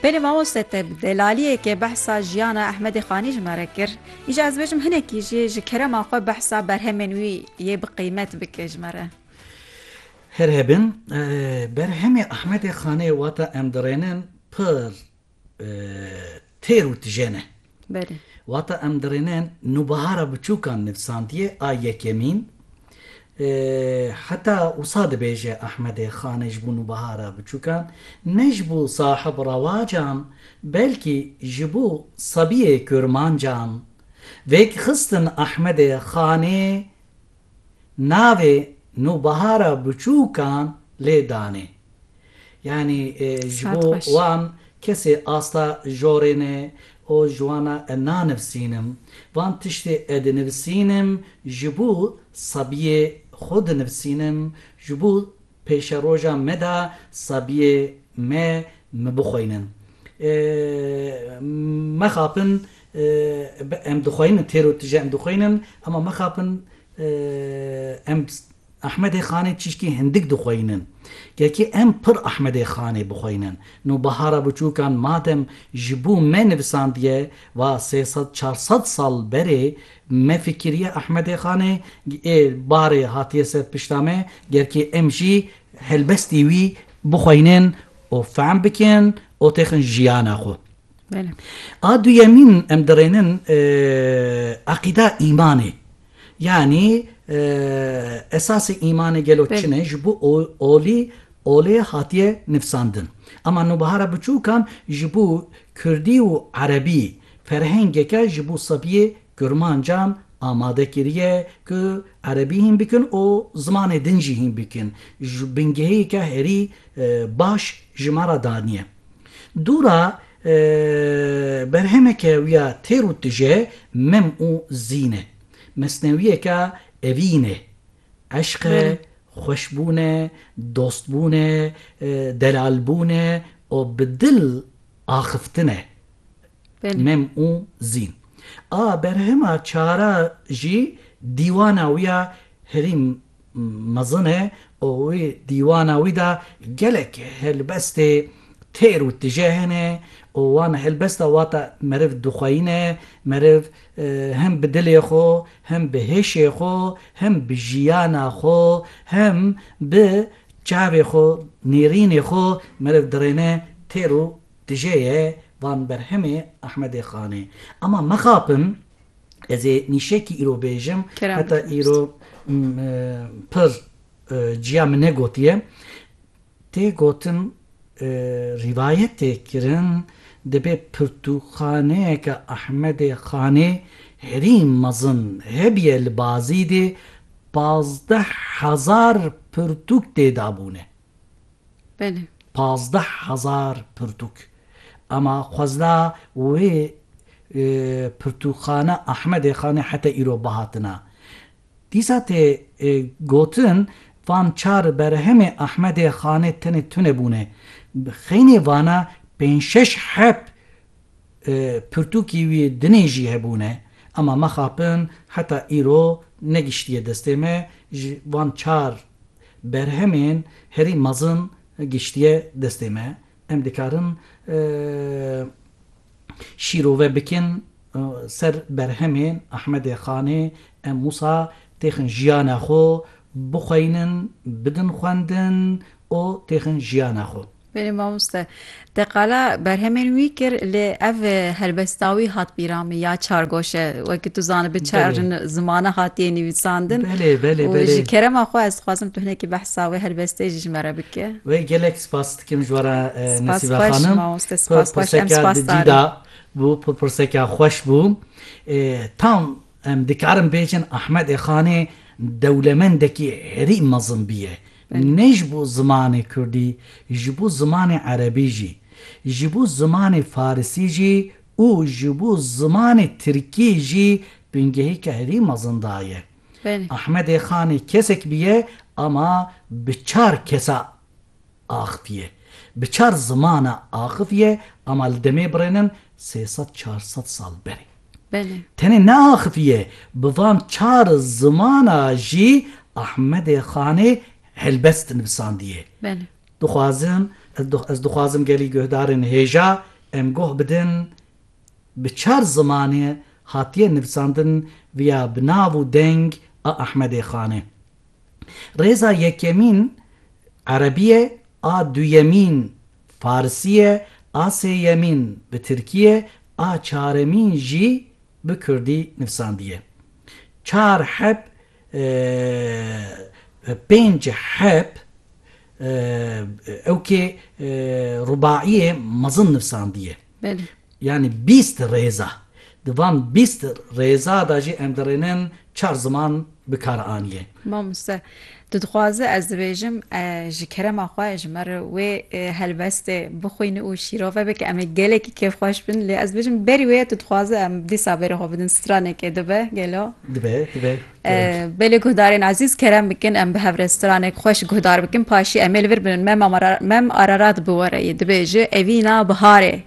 Belê mamoste te bi delaliyeke behsa jiyana Ehmedê Xanî ji me re kir. Îja ez bêjim hinekî jî ji kerema xwe behsa berhemên wî yê bi qîmet bike ji me re. Her hebin, berhemê Ehmedê Xanê wata Em dirênin pir. têr û tije ne. Belê. Wata em dirênin nûbahara biçûkan nivîsandiye a yekemîn heta wisa dibêje Ahmedê Xanê ji bo nûbahara biçûkan ne ji bo sahib rewacan belkî ji bo sebiyê kurmancan vêkixistin Ahmedê Xanê navê nûbahara biçûkan lê danê. Yanî ji bo wan kesê asta jorêne û ji wan e nanivîsînim. Van tiştê e dinivîsînim ji bo sabiyê xwe dinivîsînim, ji bo Pêşeroja me de sabiyê me mi bixweynin. Mexapin em dixweynin têr û tije em dixweynin ema mexapin em Ahmedê Xanê çîşkî hindik dixweynin. Kekê em pir Ahmedê Xanê bixweynin. No Bahara Biçûkan madem ji bo me nivisandiye va sê sed çar sed sal berê Me fikiriye Ahmedê Xanê ê barê hatiye ser pişta me, ger kê em jî helbestî wî bixweynin û fehm bikin û têxin jiyana xwe. A duyemîn em dirênin eqîda îmanê. Yanî esasê îmanê gelo çi ne ji bo olî olê hatiye nifsandin. Ema nûbahara biçûkan ji bo kurdî û erebî Ferhengeke ji bo sebiyê Kurmancan amade kiriye ku Erebî hîn bikin û zimanê din jî hîn bikin, ji bingehêyeke herî baş ji me re daniye. Dûra berhemeke wiya têr û tije, mim û zîn e. Mesnewiyeke evîn e. Eşq e, xweşbûn e, dostbûn e, delalbûn e û bi dil axiftin e. Mim û zîn. A berhema çara jî dîwana wî ya herî mezin e û wî dîwana wî de gelek helbestê têr û tije hene û wan helbesta wate meriv dixweyîne, meriv hem bi dilê xwe, hem bi hêşê xwe, hem bi jiyana xwe, hem bi çavê xwe, nêrînê xwe meriv dirêne têr û Tije ye van berhemê Ahmedê Xanê. Ama mexapin ez ê nîşekî îro bêjim heta îro pir ciya min negotiye. Tê gotin rîvayet tê kirin dibê pirtûkxaneyeke Ahmedê Xanê herî mezin hebiye li Bazîdê pazdeh hezar pirtûk tê dabûne. Belê. Pazdeh hezar pirtûk. Ema xwezla wê pirtûkxane Ahmedê Xanê heta îro bihatine. Dîsa tê gotin van çar berhemê Ahmedê Xanê tenê tune bûne. Xeynê vana pênc şeş heb pirtûkî wî dinê jî hebûne. Ema mexapin heta îro negiştiye destê me ji van çar berhemên herî mezin giştiye destê me, em dikarin şîrove bikin ser berhemên Ahmedê Xanê, em wisa têxin jiyana xwe bixweynin, bidin xwendin û têxin jiyana xwe. Belê mamoste. Te qala berhemên wî kir lê ev helbesta wî hat bîra min ya çargoşe. Wekî tu zanî bi çar zimane hatiye nivîsandin. Belê belê belê. Û ji kerema xwe ez dixwazim tu hinekî behsa wê helbestê jî ji me re bike. Wê gelek spas dikim ji we re Nesîbe xanim. Spas xweş mamoste spas xweş. Em spas didar. Pirseka didî da bû pirseka xweş bû. Tam Em dikarin bêjin Ahmedê Xanê dewlemendekî herî mezin bûye. Ne ji bo zimanê kurdî, ji bo zimanê erebî jî, ji bo zimanê farisî jî û ji bo zimanê tirkî jî bingehîka herî mezin daye. Ahmedê Xanê kesek bûye ama bi çar kesa Axp ye. Bi çar zimana Axp ye ama li demê birênin sê sed çar sed sal berê. Belê. Tenê ne Axp ye, bi van çar zimana jî Ahmedê Xanê helbest nivisandiye. Belê. Dixwazim, ez dixwazim gelî guhdarên hêja em guh bidin, bi çar zimanê hatiye nivisandin viya bi nav û deng a Ahmedê Xanê. Rêza yekemîn erebî ye, a duyemîn farsî ye, a sêyemîn bi tirkî ye, a çaremîn jî bi kurdî nivîsandiye. Çar heb pênc heb ewkê rubaîyê mezin nivîsandiye. Belê. Yanî bîst rêza. Di van bîst rêza de jî em dirênin çar ziman bi kar aniyê. Mamoste, tu dixwazi ez dibêjim ji kerema xwe ji me re wê helbestê bixwîni û şîrove be ke em ê gelekî kêfxweş bin. Lê ez dibêjim berî wê ye tu dixwazi em dîsa berê xwe bidin stranekê dibe gelo? Dibe, dibe. Belê guhdarên ezîz kerem bikin em bi hevrestranek xweş guhdar bikin paşî emê li vir binin mem ararat bi were yê dibêji evîna biharê.